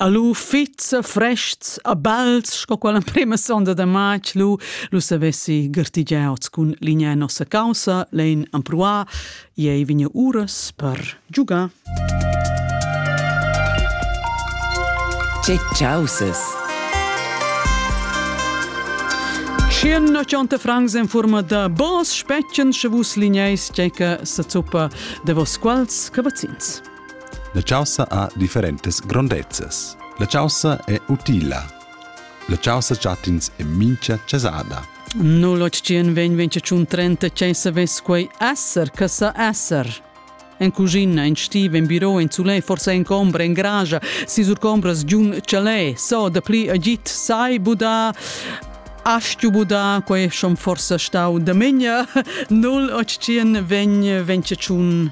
Alu fitz frests a bals sco quella prima sonda da matg lu lu savessi gartigiaus cun ligna nossa caussa lein ampruar ei vigna uras per giugar Che causes Schian ochanta francs en forma da bos spetschen sche vus ligneis tgeca sa zuppa de vos quals cavazzins. La chaussa ha differentas grondezzas. La chaussa è utila. La chaussa chattins è mincha chasada. 0825 che savess quei esser, che sa esser. En cucina, en stiv, en biro, en sulè, forse en combra, en gragia, si sur combras giun chalè, so da pli agit sai buda Astju buda, quei schon forse stau da minja 0825 ventceciun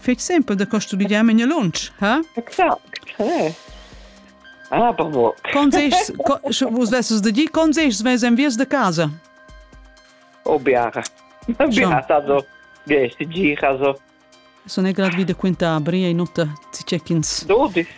Fetg sempel da custumigiar memia lunsch, ha? Exact, hey. Ah, bobo. Consegst, co, vos vesses da dir, consegst mes enviers de casa? Oh, biara. Biara, so. Gesti, gira, so. Sono è grad vide quinta abri e nota ci check-ins. Dodis.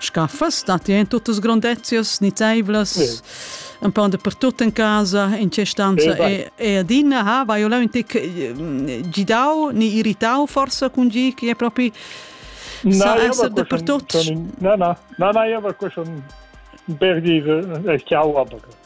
Scha füss stat in tuttas grondezias nizzaivlas un pon dapertut in casa in quest'anza e e adina ha vai eu launtic gidau ni irritau forsa cun gi chi è propi sa esser dapertut na na na na eu aver quest un ber dir chiau aber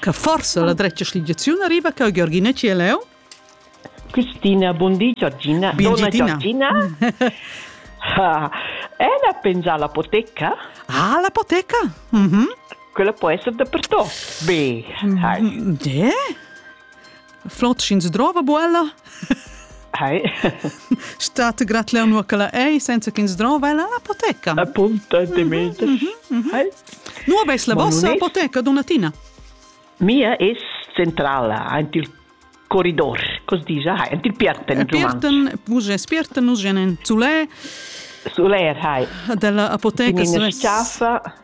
Che forsa la dretga schligiaziun arriva cau Georgina Cieleu? Cristina, buondì Giorgina. Bien Donna Giorgina. Ah, ella pensa all'apoteca? Ah, l'apoteca? Mm -hmm. Quella può essere dappertutto. B. Mm -hmm. D. Flot sch'ins drova buella? Hei. State gratler nur che la ei senza ch'ins drova ella apoteca. Appunta de meter. Hei. Nu aveis la vossa apoteca, donatina? Mia es centrala, aint il corridor, cos dice, hai, aint il Pierten, Pierten, vus Pierten, nus gen in Zulè. Zuler, hai. Della apoteca. In schafa.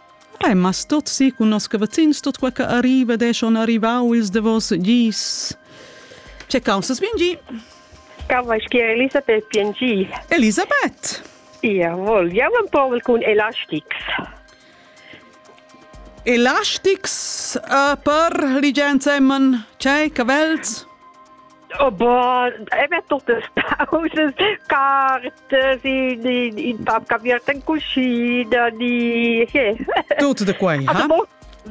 Ei ma stot si cun nos cavazzins tot quei che arriva ed ei schon arrivau ils davos gis. Che caussas vingi? Cavaschia Elisabeth piangi. Elisabeth! Ia vol, jau en povel cun elastics. Elastics uh, per ligienza emmen, cei, cavels? Oh bon, e met tuttas pausas, cartas in, in, in pap caviert in cucina, ni... Yeah. Tutte de quei, ha?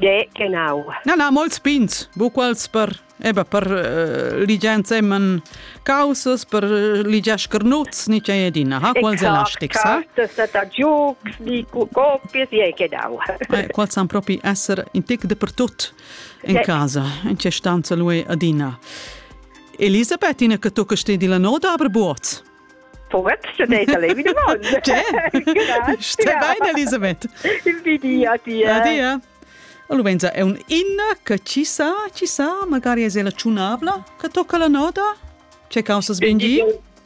Ja, genau. Na, na, molts pins, buquals per, eba, per uh, ligian semen causas, per uh, ligiar schernuts, ni c'è edina, ha? Quals è lastic, sa? Cartas da giucs, ni copies, ja, genau. Eh, quals san propi essere in tic de per tut in casa, in che stanza lui adina. Elisabeth, ina che tu che stedi la noda aber Buoz. Poet, ce deita lei mine mon. Stai bene, Elisabeth. Invidi, adia. Adia. Allora, è un inna che ci sa, ci sa, magari è la ciunabla, che tocca la noda? C'è causa sbindi?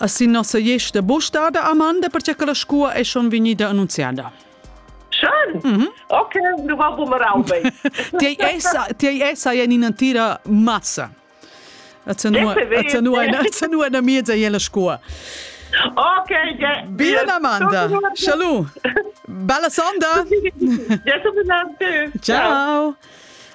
a sin nossa iesta bustada Amanda perché che la scua è schon vegnida annunziada. Schön! Mm -hmm. Okay, du war bumeraubai. Ti essa, ti essa in ina tira massa. Azzenu una miezza e la scua. Ok, ja. Bien Amanda. Salut. Bella sonda. Ciao.